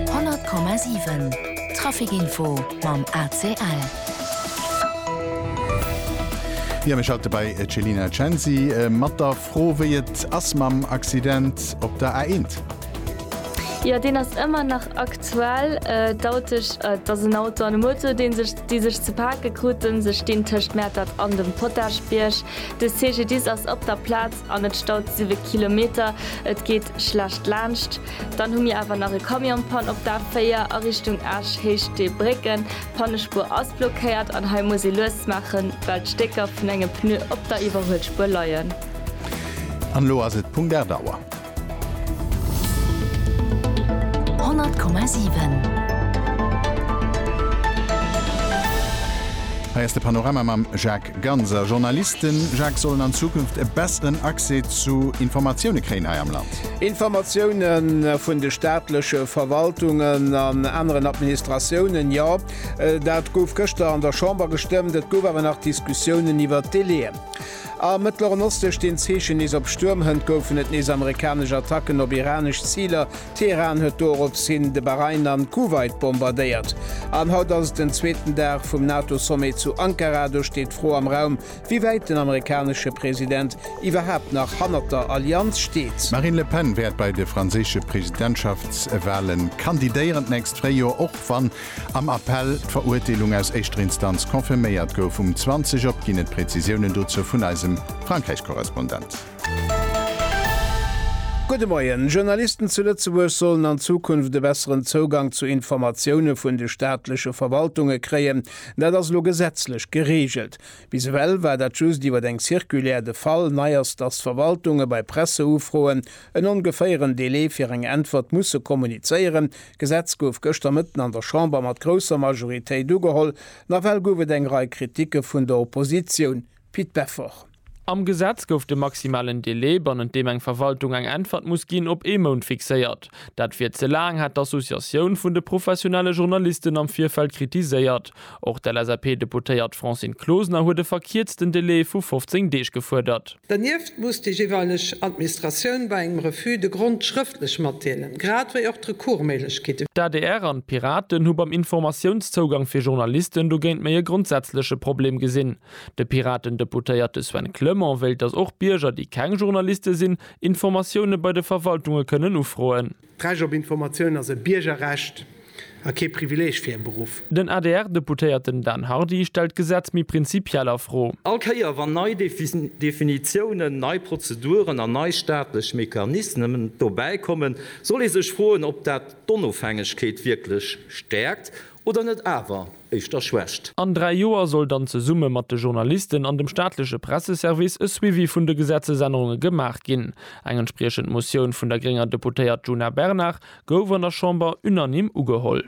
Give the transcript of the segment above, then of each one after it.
100,7 Traficinfo mam ACL. Jo mir schalte bei Celina Censi mat der Fro wéi et ass mam Accident op der A1. Jo deen ass ëmmer nach aktuell. D'Autesch, et ass en Auto an e Moto dee sech déi sech ze pake kruten. Se stinn tëscht Mäertert an dem Potaschbierg. De CGDIS ass op der Plaz. An et staut siwe Kilometer, et geet schlecht laanscht. Dann hu mir awer nach e Camion Panne op der A4 a Richtung Esch, Héicht de Brécken. D'Pannespuer ass blockéiert an hei muss ee lues maachen, well d'Stécker vun engem Pneu op der Iwwerhuelspuer leien. An elo ass et Punkt 8 Auer. 100,7. Hei ass de Panorama mam Jacques. Ganz a Journalisten, Jacques, sollen an Zukunft e besseren Accès zu Informatioune kréien hei am Land. Informatioune vun de staatleche Verwaltungen an aneren Administratiounen, jo, dat gouf gëschter an der Chamber gestëmmt. Et gouf awer nach Diskussiounen iwwer d'Délaiën. Am Mëttleren Oste stinn d'Zeechen nees op Stuermhënt, goufen et nees amerikanesch Attacken op iranesch Ziler, Teheran huet dorops hin de Bahrain an Kuwait bombardéiert. An haut ass et den zweeten Dag vum NATO-Sommet zu Ankara. Do steet d'Fro am Raum, wéi wäit den amerikanesche President iwwerhaapt nach hannert der Allianz steet. D'Marine Le Pen wäert bei de franséische Presidentschaftswahle kandidéieren d'nächst Fréijoer, och wann am Appell d'Verurteelung aus éischter Instanz confirméiert gouf. Um 20 op ginn et Prezisiounen dozou vun eisem Frankräich-Korrespondent. Gudde Moien. Journalisten zu Lëtzebuerg sollen an Zukunft e besseren Zougang zu Informatioune vun de staatleche Verwaltunge kréien. Dat ass elo gesetzlech gereegelt. Bis ewell war dat just iwwer eng Circulaire de Fall. Nei ass, datt d'Verwaltunge bei Presseufroen en ongeféieren Delai fir eng Äntwert musse kommunizéieren. D'Gesetz gouf gëschter Mëtten an der Chamber mat grousser Majoritéit ugeholl. Nawell gouf et eng Rei Kritike vun der Oppositioun. Pit Beffort. Am Gesetz gouf de maximalen Delai, bannent deem eng Verwaltung eng Äntwert muss ginn, op ee Mount fixéiert. Dat wier ze laang, hat d'Associatioun vun de professionelle Journalisten am Virfeld kritiséiert. Och d'LSAP-Deputéiert Francine Closener huet e verkierzten Delai vu 15 Deeg gefuerdert. Dernieft muss déi jeeweileg Administratioun bei engem Refus de Grond schrëftlech matdeelen, grad wéi och d'Recours-Méiglechkeet. D'adr an d'Piraten hu beim Informatiounszougang fir Journalisten dogéint méi e grondsätzleche Problem gesinn. De Piraten-Deputéierte Sven Clement wéilt, datt och Bierger, déi keng Journaliste sinn, Informatioune bei de Verwaltunge kënnen ufroen. D'Recht op Informatioun ass e Biergerrecht a kee Privileeg fir e Beruff. Den ADR-Deputéierten Dan Hardy stellt d'Gesetz méi prinzipiell a Fro. All Kéier wann nei Definitiounen, nei Prozeduren an nei staatlech Mechanismen dobäi kommen, soll ee sech froen, ob dat d'Onofhängegkeet wierklech stäerkt oder net awer. éischter schwächt. An dräi Joer soll dann zesumme mat de Journalisten an dem staatleche Presseservice e Suivi vun de Gesetzesännerunge gemaach ginn. Eng entspriechend Motioun vun der grénger Deputéiert Djuna Bernard gouf an der Chamber unanime ugeholl.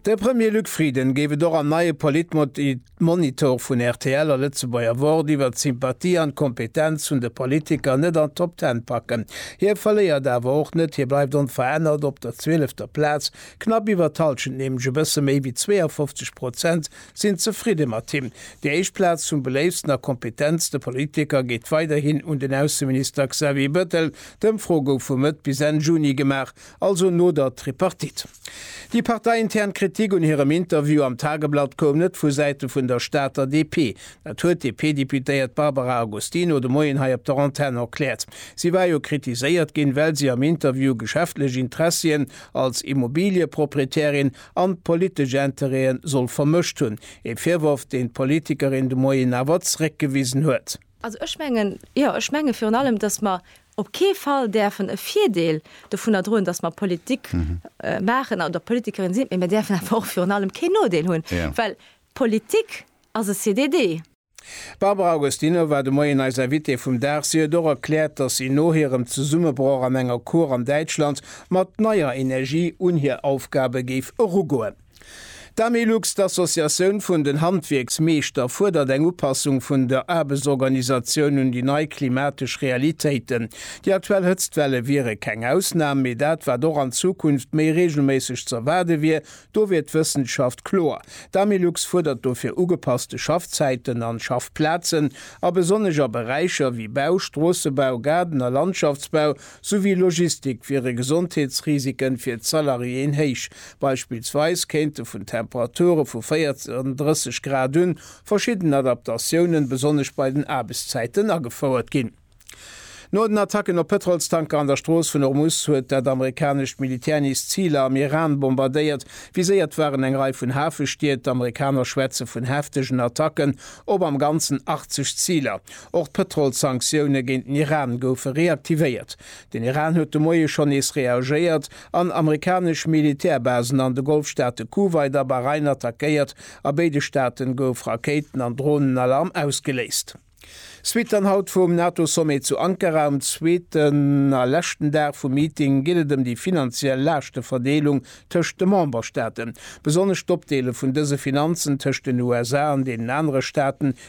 De Premier Luc Frieden géif et och am neie Politmod. D'Monitore vun rtl a Lëtzebuerger Wort iwwert d'Sympathie an d'Kompetenz vun de Politiker net an d'Top Ten packen. Hie verléiert awer och net, hie bleift onverännert op der zwielefter Plaz. Knapp iwwer d'Hallschent, nämlech e bësse méi wéi 52 Prozent, sinn zefridde mat him. Déi éischt Plaz vum beléiftsten a kompetentste Politiker geet weiderhin un den Ausseminister Xavier Bettel. D'Ëmfro gouf vu Mëtt bis Enn Juni gemaach. also no der Tripartite. Déi parteiintern Kritik un hirem Interview am Tageblatt koum net vu Säite vun der Stater DP. Dat huet d'DP-Deputéiert Barbara Agostino de Moien hei op der Antenn erkläert. Si war jo kritiséiert ginn, well si am Interview geschäftlech Interessien als Immobiliëproprietärin an politesch Interêten soll vermëscht hunn. Ee Virworf, deen d'Politikerin de Moien awer zréckgewisen huet. Also ech mengen, jo, ech menge virun allem, dass mer op kee Fall däerfen e Virdeel dovunner droen, datt mer Politik maachen oder Politikerin sinn, mä mer däerfen awer och virun allem keen Nodeel hunn, well Politik ass e CDD. D'Barbara Agostino war de Moien eis Invitée vum Dag. Si huet och erkläert, datt si no hirem Zesummebroch an enger Cour an Däitschland mat neier Energie un hir Aufgabe géif erugoen. D'Amilux, d'Associatioun vun den Handwierksmeeschter, fuerdert eng Upassung vun der Aarbechtsorganisatioun un déi nei klimatesch Realitéiten. Déi aktuell Hëtztwelle wiere keng Ausnam, mee dat, wat och an Zukunft méi reegelméisseg z'erwaarde wier, do wier d'Wëssenschaft kloer. D'Amilux fuerdert dofir ugepasste Schaffzäiten an Schaffplazen, a besonnesch a Beräicher wéi Bau, Stroossebau, Gaarden a Landschaftsbau, souwéi Logistik wiere Gesondheetsrisiken fir d'Salariéen héich. Beispillsweis kéinte vun Temperature vu 40 an 30 Grad un verschidden Adaptatiounen, besonnesch bei den Aarbechtszäiten, agefouert ginn. No den Attacken op Pëtrolstanker an der Strooss vun Hormus huet dat amerikanescht Militär nees Ziler am Iran bombardéiert. Viséiert waren eng Rei vun Hafestied. D'Amerikaner schwätze vun heftegen Attacken op am Ganzen 80 Ziler. Och d'Pëtrolssanktioune géint den Iran goufe reaktivéiert. Den Iran huet de Moie schonn nees reagéiert an amerikanesch Militärbasen an de Golfstaate Kuwait a Bahrain attackéiert. A béide Staate gouf Rakéiten an Dronenalarm ausgeléist. Suite dann haut vum NATO-Sommet zu Ankara. Um zweeten a leschten Dag vum Meeting geet et ëm déi finanziell Laaschteverdeelung tëscht de Memberstaaten. Besonnesch d'Opdeele vun dëse Finanzen tëscht den USA an deenen anere Staaten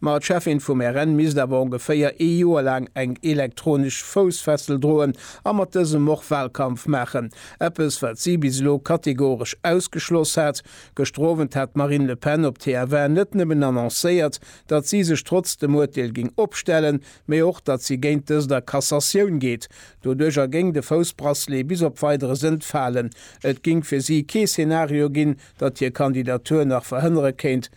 Ma d'Cheffin vum RN misst awer ongeféier ee Joer laang eng elektronesch Foussfessel droen a mat dësem och Wahlkampf maachen. Eppes, wat si bis elo kategoresch ausgeschloss hat. Gëschter Owend hat d'Marine Le Pen op TF1 net nëmmen annoncéiert, datt si sech trotz dem Urteel géing opstellen, mee och, datt si géint dëst a Cassatioun geet. Doduercher géing de Foussbracelet bis op Weideres entfalen. Et géing fir si kee Szenario ginn, datt hir Kandidatur nach verhënnere kéint,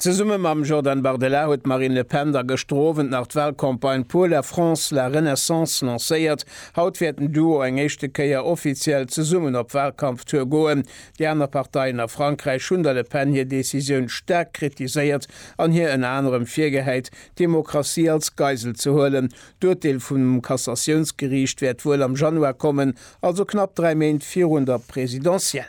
Zesumme mam Jordan Bardella huet d'Marine Le Pen da gëschter Owend nach d'Walcampagne Pour la France, la Renaissance lancéiert. Haut wäert den Duo eng éischte Kéier offiziell zesummen op Walkampftour goen. Déi aner Parteien a Frankräich hunn der Le Pen hir Decisioun staark kritiséiert an hir ënner anerem virgehäit, d'Demokratie als Geisel ze huelen. D'Urteel vum Cassatiounsgeriicht wäert wuel am Januar kommen, also knapp dräi Méint virun der Presidentielle.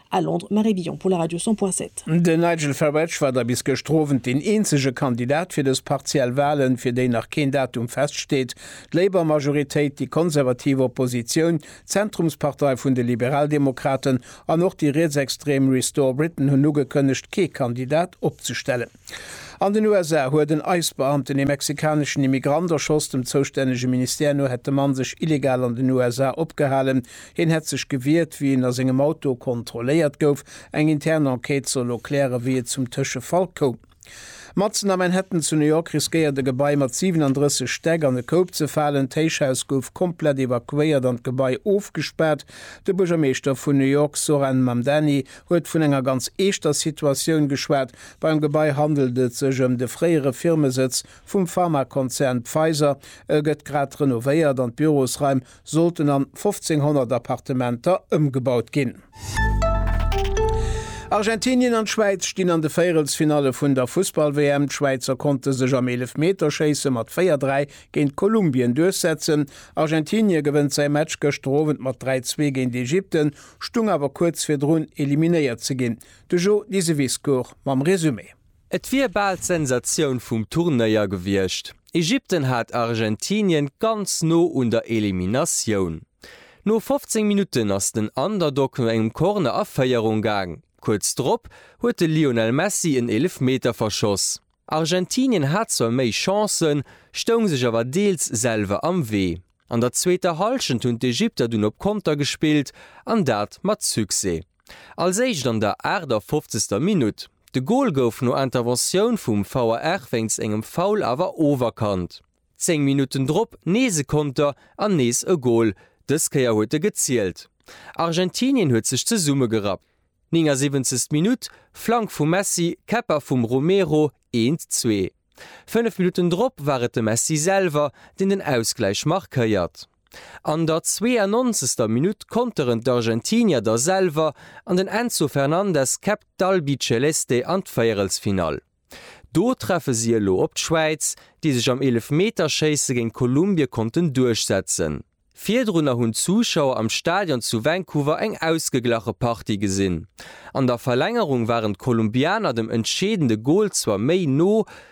A Londres, Marie Billon pour la radio 100 point 7. Den Nigel Farage war da bis gëschter Owend deen eenzege Kandidat fir dës partiell Walen, fir déi nach keen Datum feststeet. D'Labour-Majoritéit, déi konservativ Oppositioun, d'Zentrumspartei vun de Liberaldemokraten an och déi rietsextrem Restore Britain hunn ugekënnegt, kee Kandidat opzestellen. An den USA huet en ICE-Beamten ee mexikaneschen Immigrant erschoss. Dem zoustännege Ministère no hätt de Mann sech illegal an den USA opgehalen, Hien hätt sech gewiert, wéi en a sengem Auto kontrolléiert gouf. Eng intern Enquête soll elo klären, wéi et zum Tëschefall koum. Matzen a Manhattan zu New York riskéiert e Gebai mat 37 Stäck an e Koup ze falen. D'Héichhaus gouf komplett evakuéiert an d'Gebai ofgespaart. De Buergermeeschter vun New York, Zohran Mamdani, huet vun enger ganz eeschter Situatioun geschwat. Beim Gebai handelt et sech ëm de fréiere Firmesëtz vum Pharmakonzern Pfizer. E gëtt grad renovéiert an d'Bürosraim sollten an 1500 Appartementer ëmgebaut ginn. Argentinien an d'Schwäiz stinn an de Véierelsfinalle vun der Fussball-WM. D'Schwäizer konnte sech am Eelefmeterschéisse mat 4, 3 géint Kolumbien duerchsetzen. Argentinie gewënnt säi Match gëschter Owend mat 3, 2 géint Ägypten, stung awer kuerz virdrun eliminéiert ze ginn. De Jo Diseviscourt mam Resumé. Et wier bal d'Sensatioun vum Turnéier gewiescht. Ägypten hat Argentinien ganz no un der Eliminatioun. No 15 Minutten ass den Underdog no engem Corner a Féierung gaang. Kuerz drop huet de Lionel Messi en Eelefmeter verschoss. Argentinien hat zwar méi Chancen, stoung sech awer deels selwer am Wee. An der zweeter Hallschent hunn d'Ägypter dunn op Konter gespillt an dat mat Succès. Als éischt an der 58. Minutt. De Gol gouf no Interventioun vum VAR wéinst engem Foul awer oferkannt. Zéng Minutten drop nees e Konter an nees e Gol, dës Kéier huet e gezielt. Argentinien huet sech zesummegerappt. 79. Minutt. Flank vum Messi, Käpper vum Romero, 1, 2. Fënnef Minutten drop war et de Messi selwer, deen den Ausgläich markéiert. An der 92. Minutt konteren d'Argentinier da selwer an den Enzo Fernandez käppt d'Albiceleste an d'Véierelsfinall. Do treffe si elo op d'Schwäiz, déi sech am Eelefmeterschéisse géint Kolumbie konnten duerchsetzen. Virdrunner hunn d'Zuschauer am Stadion zu Vancouver eng ausgeglache Partie gesinn. An der Verlängerung waren d'Kolumbianer dem entscheedende Gol zwar méi no,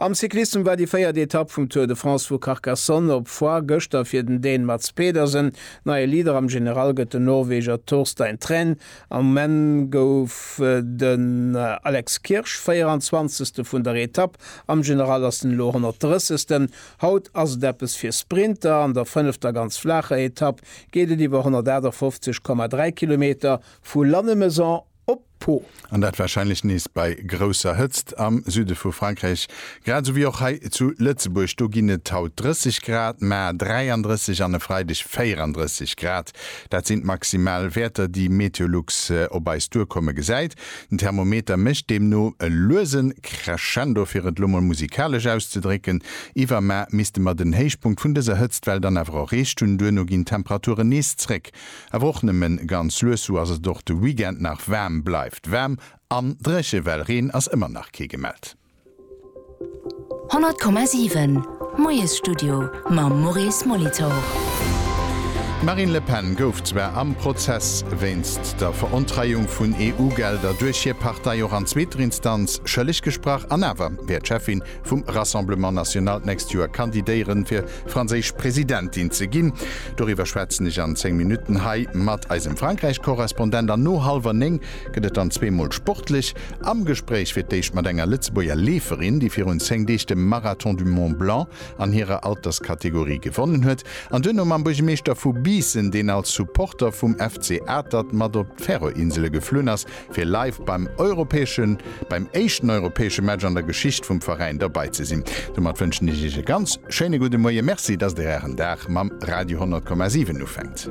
Am Cyclissem war déi véiert Etapp vum Tour de France vu Carcassonne op Foix gëschter fir den Dän Mads Pedersen. Neie Leader am General gëtt den Norweger Torstein Træn. Am Menn gouf den Alex Kirsch 24. vun der Etapp, am General ass den Elo 130. Haut ass et eppes fir Sprinter. An der fënnefter ganz flaacher Etapp geet et iwwer 158,3 Kilometer vu Lannemezan, op Po. An dat warscheinlech nees bei grousser Hëtzt am Süde vu Frankräich, grad esou wéi och hei zu Lëtzebuerg. Do ginn et haut 30 Grad, maer 33 an e Freideg 34 Grad. Dat sinn d'Maximalwäerter, déi Meteolux op eis duerkomme gesäit. Den Thermometer mécht deemno e luese Crescendo, fir et lo mol musikalesch auszedrécken. Iwwermaer misste mer den Héichpunkt vun dëser Hëtztwell dann awer erreecht hunn. Duerno ginn d'Temperaturen nees zréck Awer och nëmmen ganz lues, sou ass et och de Weekend nach waarm. Bleift waarm an dréche well Reen ass ëmmer nach kee gemellt. 100,7 Moiesstudio mam Maurice Molitor. D'Marine Le Pen gouf zwar am Prozess wéinst der Verontreiung vun EU-Gelder duerch hir Partei och an zweeter Instanz schëlleg gesprach an awer wäert d'Cheffin vum Rassemblement National d'nächst Joer kandidéieren, fir franséisch Presidentin ze ginn. Doriwwer schwätzen ech an 10 Minutten hei mat eisem Frankräich-Korrespondent. An no hallwer 9 gëtt et dann zweemol sportlech. Am Gespréich fir d'éischt mat enger Lëtzebuerger Leeferin, déi virun 10 Deeg de Marathon du Mont Blanc an hirer Alterskategorie gewonnen huet. An duerno mam Buergemeeschter vu Biissen, deen als Supporter vum FC Atert mat op d'Färöerinsele geflunn ass, fir live beim europäeschen, beim éischten europäesche Match an der Geschicht vum Veräin dobei ze sinn. Domat wënschen ech Iech e ganz schéine gudde Moie. Merci, dass Der Ären Dag mam Radio 100,7 ufänkt.